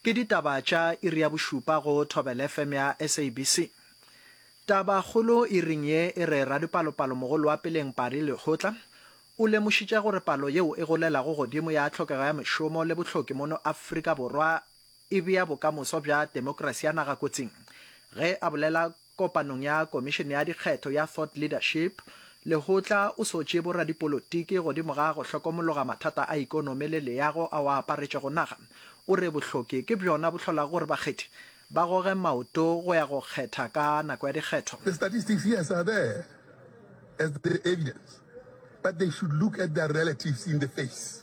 Ke ditaba tša iri ya bošupa go Thobela FM ya SABC. Taba kgolo iring ye e re radipalopalomogolo wa peleng Pari Lehotla o lemošitše gore palo yeo e golelago godimo ya tlhokego ya mešomo le bohloki mono Afrika Borwa e bea bokamoso bja temokerasi ya naga kotsing ge a bolela Kopanong ya Komišene ya Dikgetho ya Thought Leadership, Lekgotla o sotše boradipolotiki godimo ga go hlokomologa mathata a ikonomi le leago ao a aparetšego naga. O re bohloki ke bjona bo hlolago gore bakgethi ba goge maoto go ya go kgetha ka nako ya dikgetho. The statistics, yes, are there as the evidence, but they should look at their relatives in the face.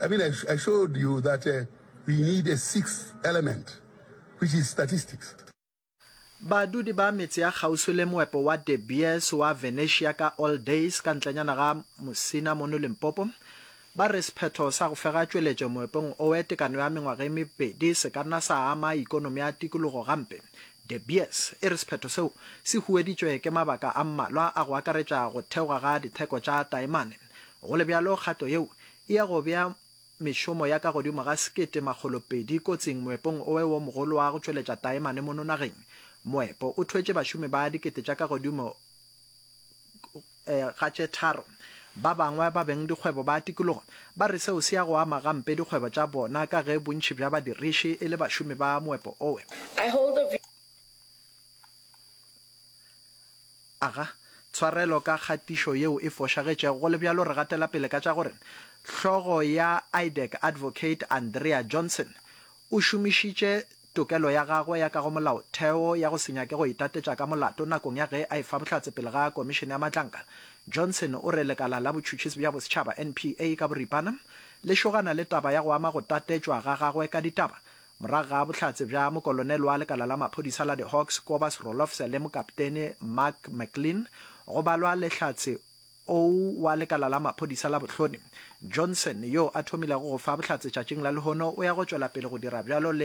I mean, I, I showed you that uh, we need a sixth element, which is statistics. Badudi ba metse ya kgauswi le moepo wa De Beers wa Venetia ka All Days ka ntlenyana ga Musina mono Limpopo ba re sephetho sa go fega tšweletšo moepong owe tekano ya mengwaga e mebedi se ka nna sa ama ikonomi ya tikologo gampe. De Beers e re sephetho seo se hueditšwe ke mabaka a mmalwa a go akaretša go theoga ga ditheko tša taemane. Go le bjalo, kgato yeo e ya go bea mešomo ya ka godimo ga sekete makgolo pedi kotsing moepong owe wo mogolo wa go tšweletša taemane mono nageng. Moepo o thwetše bašomi ba dikete tša ka godimo ga tše tharo. Ba bangwe ba beng dikgwebo ba tikologo ba re seo se ya go ama gampe dikgwebo tša bona ka ge bontši bja badiriši e le bašomi ba moepo owe. Aga tshwarelo ka kgatišo yeo e fošagetšego. Go le bjalo, re gatela pele ka tša gore hlogo ya IDEC, Advocate Andrea Johnson, o šomišitše tokelo ya gagwe ya ka go Molaotheo ya go se nyake go itatetša ka molato nakong ya ge a efa bohlatse pele ga Komišene ya Matlankana. Johnson o re lekala la botšhutšhisi bja bosetšhaba, NPA, ka boripana le šogana le taba ya go ama go tatetšwa ga gagwe ka ditaba Morago ga bohlatse bja mokolonel wa lekala la maphodisa la di-Hawks Kobus Rolofse le mokaptene Mark McLean, go balwa le hlatse ou wa lekala la maphodisa la bohlodi. Johnson, yo a thomilego go fa bohlatse tšatšing la lehono, o ya go tšwela pele go dira bjalo le